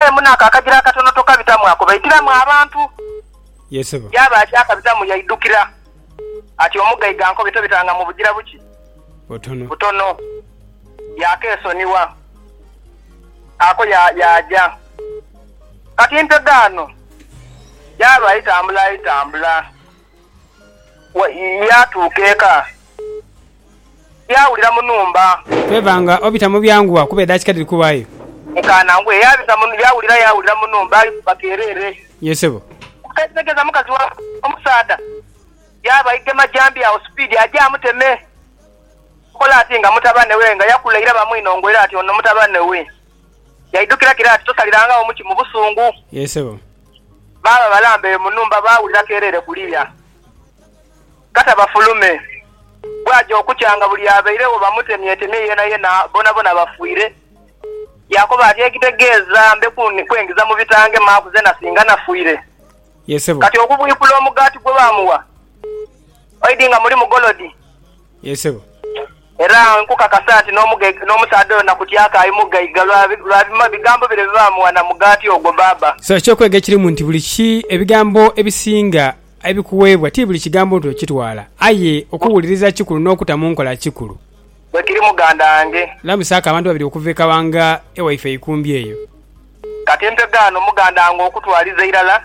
Abairemu n'ako akagira akatono tokabitamu ako baitiramu abantu. Ye sebo. Yaaba akyakabitamu yaidhukira ati, Omugaiga ankobye tobitanga mu bugira buki? Butono. Butono. Yaakeesonigha. Ako ya, yaaja. Kati nte gaano. Yaaba aitambula aitambula. Yaatuuka eka, yaawulira mu nhumba. Favour nga obita mu byanguwa kuba edakika dhiri kuwaayo. Nkaana ngwe. Yaabita mu, yaawulira, yaawulira mu nhumba ali kuba keereere. Yee ssebo. Okuteetegeeza mukazi wa omusaadha, yaaba aigema jambi agho sipiidi aje amuteme. Akola ati nga mutabane we, nga yakula ira bamwinhongoera ati ono mutabane we. Yaidhukira kira ati tosalirangagho muki mu busungu. Yee ssebo. baaba balambere mu nhumba baawulira keereere kuliya. Kata bafulume. Bwaaja okukya nga buli abairegho bamutemyetemye yeenayena bonabona bafwire. Yaakoba ati, Ekitegeeza mbe kwengiza mu bitange maaku zeena singa nafwire? Kati okubwikula omugaati gwe baamugha, oidhi nga mulimu golodi? Yee sebo. Era nkukakasa nti n'omusaadha oyo nakutyaku aye mughaiga lwa bigambo bino bye baamugha na mugaati ogwo, baaba. So eky'okwega ekirimu nti buli ki, ebigambo ebisinga ebikuweebwa ti buli kigambo nti okitwala, aye okuwuliriza kikulu n'okuta mu nkola kikulu. Bwe kiri muganda wange. Lamusaaku abantu babiri okuva e Kawanga ewaife eikumbi eyo. Kati mpegha ano muganda wange okutwaliza irala.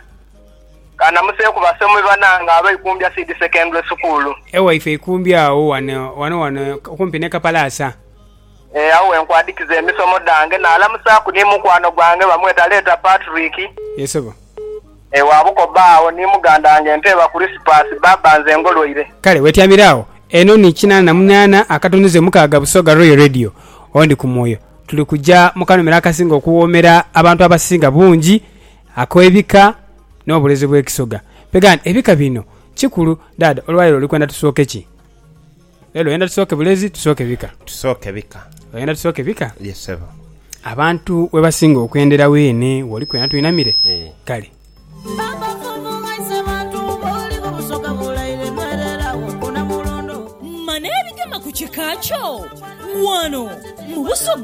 Ka namuseeku basomi banange aba Ikumbya Seed Secondary School. Ewaife Ikumbya agho ghano ghano ghano okumpi ni Kapalaasa. Ee, agho we nkwadikiza emisomo dhange. Naalamusaaku ni mukwano gwange bamweta Leeta Patrick. Yee sebo. Ee, wa bukoba agho ni muganda wange Nteeba Kurisipasi. Baaba nze ngolwaire. Kale wetyamire agho. Eno ni kinaana na munaana akatunduze mukaaga Busoga Royal Radio. Ondi ku mwoyo. Tuli kuja mu kanomera akasinga okuwoomera abantu abasinga bungi Akoebika n'obulezi bw'ekisoga. Begha nti, Ebika bino kikulu. Dhaadha, olwaleero oli kwenda tusooke ki? Leero oyenda tusooke bulezi, tusooke bika? Tusooke bika. Oyenda tusooke bika? Ye, ssebo. Abantu webasinga okwendera weene woli kwenda twinamire? Ee. Kale. Mane ebigema ku kika kyo wano mu Busoga.